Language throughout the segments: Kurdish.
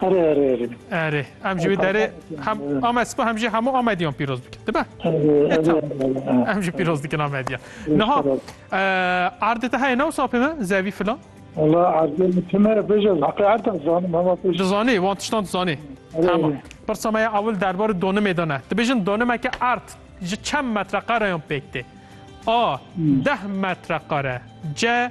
Erê erê erê. Erê em jî wê derê hem Amed spa hem jî hemû Amediyan pîroz bikin dibe. Em jî pîroz dikin Amediyan. Niha erdê te heye ne wisa pê me zevî filan. Valla erdê min pê me bêje heqê erda zanim hema pêj. Dizanî wan tiştan dizanî. Tamam. Pirsa me ya ewil derbarê donimê de ne. Dibêjin donimeke erd ji çend metreqareyan pêk tê. A. Deh metreqare. C.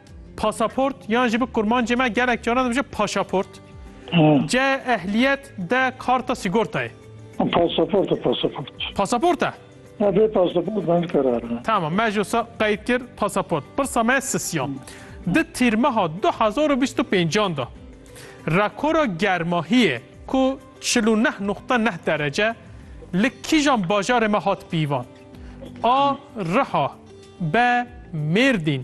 Pasaport yan jî bi kurmancê me gelek caran dibêje paşaport. Ce ehliyet de karta sigortayê. Pasaport e pasaport. Pasaport e? Ya bê pasaport ben karar ne. Tamam me jî sa qeyd kir pasaport. Pirsa me sisyan. Di tîrmeha 2025 da rekora germahiyê ku 49.9 derece li kîjan bajarê me hat pîvan? A. Riha B. Mêrdîn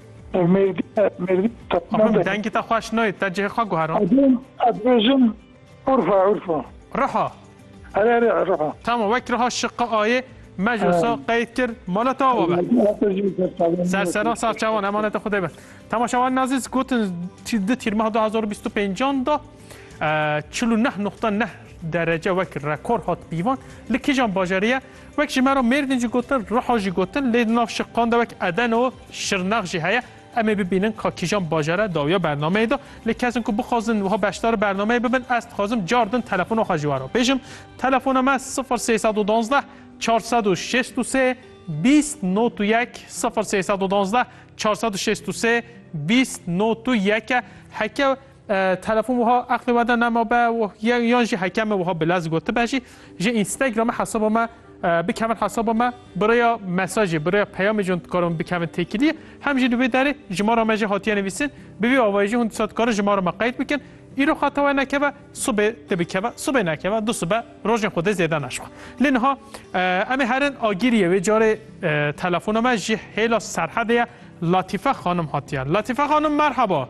Ev mêrdî mêrdî Axund dengê te xweş nayê te cihê xwe guherand. Ez dibêjim urfa urfa. Riha. Here here riha. Tamam wek riha şiqa ayê me ji wisa qeyd kir mala te ava be. Sersera serçevan emanete xwedê be. Temaşevan nazîz gotin di tîrmeha 2025 da 49.9 derece wek rekor hat pîvan li kîjan bajarî ye wek ji me re mêrdîn jî gotin riha jî gotin lê di nav şiqan de wek edeno Şirnex jî heye. Em ê bibînin ka kîjan bajere dawiya bernameyê de. Lê kesên ku bixwazin wiha beşdar bernameyê bibin ez dixwazim car din telefona xwe ji we re bêjim. Telefona me sifir sê sed û duwazdeh çar sed û şêst û sê bîst not û yek sifir sê sed û duwazdeh çar sed û şêst û sê bîst not û yek e. Heke Telefon wiha eqlê we de nemabe û yan jî heke me wiha bi lez got tibe jî ji Instagramê hesaba me bikevin hesaba me bi rêya mesajê bi rêya peyamê jî hûn dikarin bikevin têkiliyê hem jî li wê derê ji mala me jî hatiye nivîsin bi vî avayî jî hûn disa dikarin ji mala me qeyd bikin îro xeta we nekeve sibê dê bikeve sibê nekeve du sibe rojên xwedê zêde naşiva lê niha em ê herin agîriyê wê carê telefona me ji hêla serhedê ye Latîfe xanim hatiye Latîfe xanim merheba.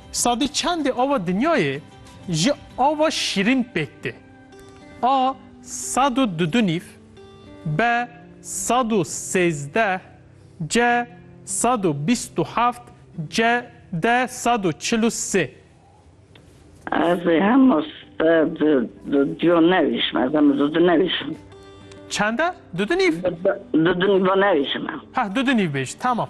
Sadî çendê ava dinyayê ji ava şîrîn pêk tê. A sed û du du nîv, B sed û sêzdeh, C sed û bîst û heft, C D sed û çil û sê. Ez ê hemû sed û du du duyan nevîşim. Ez hemû du du nevîşim. Çend e? Du du nîv? Du du nîvan nevîşim. Heh, du du nîv bêj. Temam.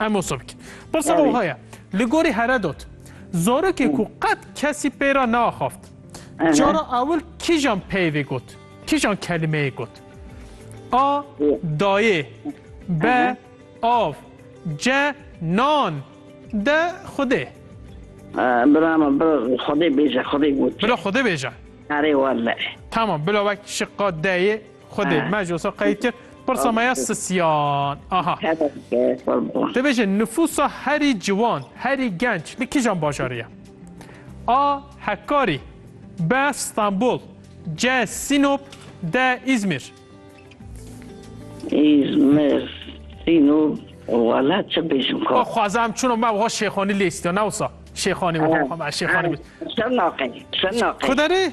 Emosovk. Pirsa me wiha ye, li gorî Heredot zarokê ku qet kesî pê re neaxaft, cara ewil kîjan peyvê got, kîjan kelimeyê got? A. Dayê B. Av C. Nan D. Xwedê Bira me bi xwedê bêje, xwedê got. Bila xwedê bêje. Erê wele. Tamam bila wek şiqa D'yê Xwedê me ji wisa qeyd kir. Pirsa me ya sisiyan. Aha. Te bêje nifûsa herî ciwan, herî genç li kîjan bajarî ye? A. Hekkarî B. Stenbol C. Sînop D. Îzmîr Îzmir, Sînop, wala çi bêjim ka. Xwaza em çûna me wiha Şêxanî lê istiya ne wisa. Şêxanî wiha me Şêxanî. Şirnaqê, Şirnaqê. Kuderê?